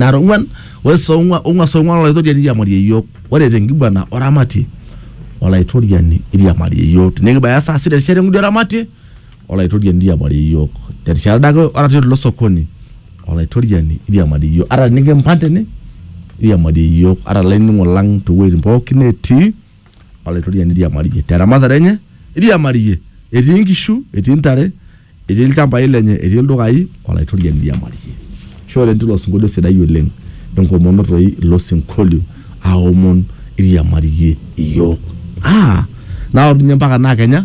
nara ong'uan ore saa ong'ua- ong'ua saa ong'uan olaitoriani iriamarie iyiook ore tenkiguana oramatie olaitoriani iriamarie iyiook tinikibaya saa sita erishata eng'udi oramatie olaitoriani iriamarie iyiook terishata ade ake ata tilo sokoni olaitoriani iriamarie iyiook ata tinikimpang tene iriamarie iyiook ata ilainining'o lang towueitin pookin netii. Olaitoriani iriamariyie te ramatare enye, iriamariyie etii inkishu, etii intare, etii ilchambai lenye, etii ildukai, Olaitoriani iriamariyie. Ashe oleng teilo sinkolio sidai oleng, enkomono toi ilo sinkolio aomon iriamariyie iyiook. Naa aoru ninye mpaka naa kenya.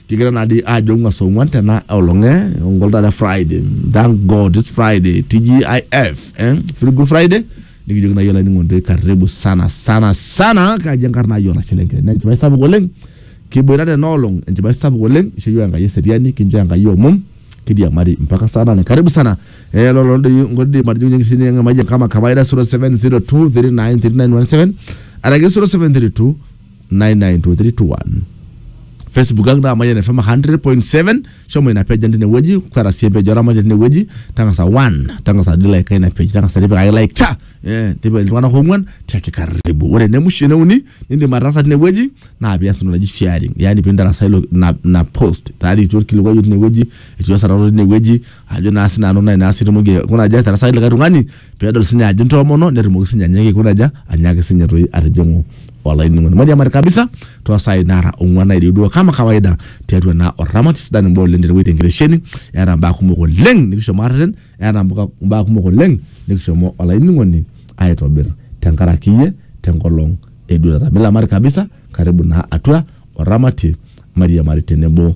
Kigira naa dii aajo ong'uan saa ong'uan tena olong eh ongol taata Friday. Thank God it's Friday. TGIF eh feel good Friday. Nikijoki naaji olainining'oni toi karibu sana sana sana kaji enkarna ai olashe lenkiteng. Naa enchipai sapuk oleng kiboita tena olong enchipai sapuk oleng isho iyiook Enkai eseriani kincho Enkai omom kiriamari mpaka saa nane. Karibu sana. Eh lolo doi nkoitoi matijing'unye enkisini ang emayian kama kawaida 0702 39 39 17 araki 0732 99231 facebook ang naa mayian fm 100.7 shomo ina page ang tinewueji kweta sii empeji oramatia tinewueji tang'asa one tang'asa dilaika ina page tang'asa tipikaki like cha eh, tipika iltung'anak ong'uan tiaki karibu ore enemusho eneuni nindim ataasa tinewueji naa pias entoki naji sharing yaani pintarasa ilo ina ina post tayari etii orkilikuai otii inewueji etii osarata otii inewueji ajo naa sinanu naa inaasi tumoki kuna aja atarasaki likae tung'ani peedol sinye ajo intoomono netumoki sinye anyaaki kuna aja anyaaki sinye toi atijing'u olainining'oni mairiamari kabisa toosai nara ong'uan naireu duo kama kawaida tiatua naa orramat sidan imbaa oleng tenewueji tenkitesheni eeta imbaa kumok oleng nikishomo arreten eeta mbuka- imbaa kumok oleng nikishomo olainining'oni aitobir tenkaraki iyie tenkolong eduarata milamari kabisa karibu naa atua orramatie mairiamari tenebo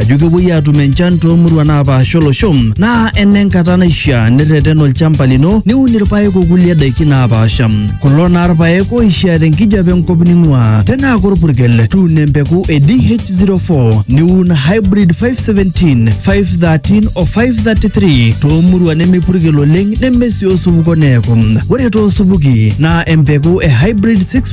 ajo kepuoi aatum enchan toomuruan naapaasha olosho naa enenkata naishiaa nirreten olchamba lino niun irpaek okulie daiki naapaasha kulo naa irpaek oishiaa tenkijape enkop ning'uaa tenaa korpurkel tuuno empeku e DH04 niun hybrid 517 513 o 533 toomuruan nemepurkel oleng nemesii osupuko neeku ore toosupuki naa empeku e hybrid 6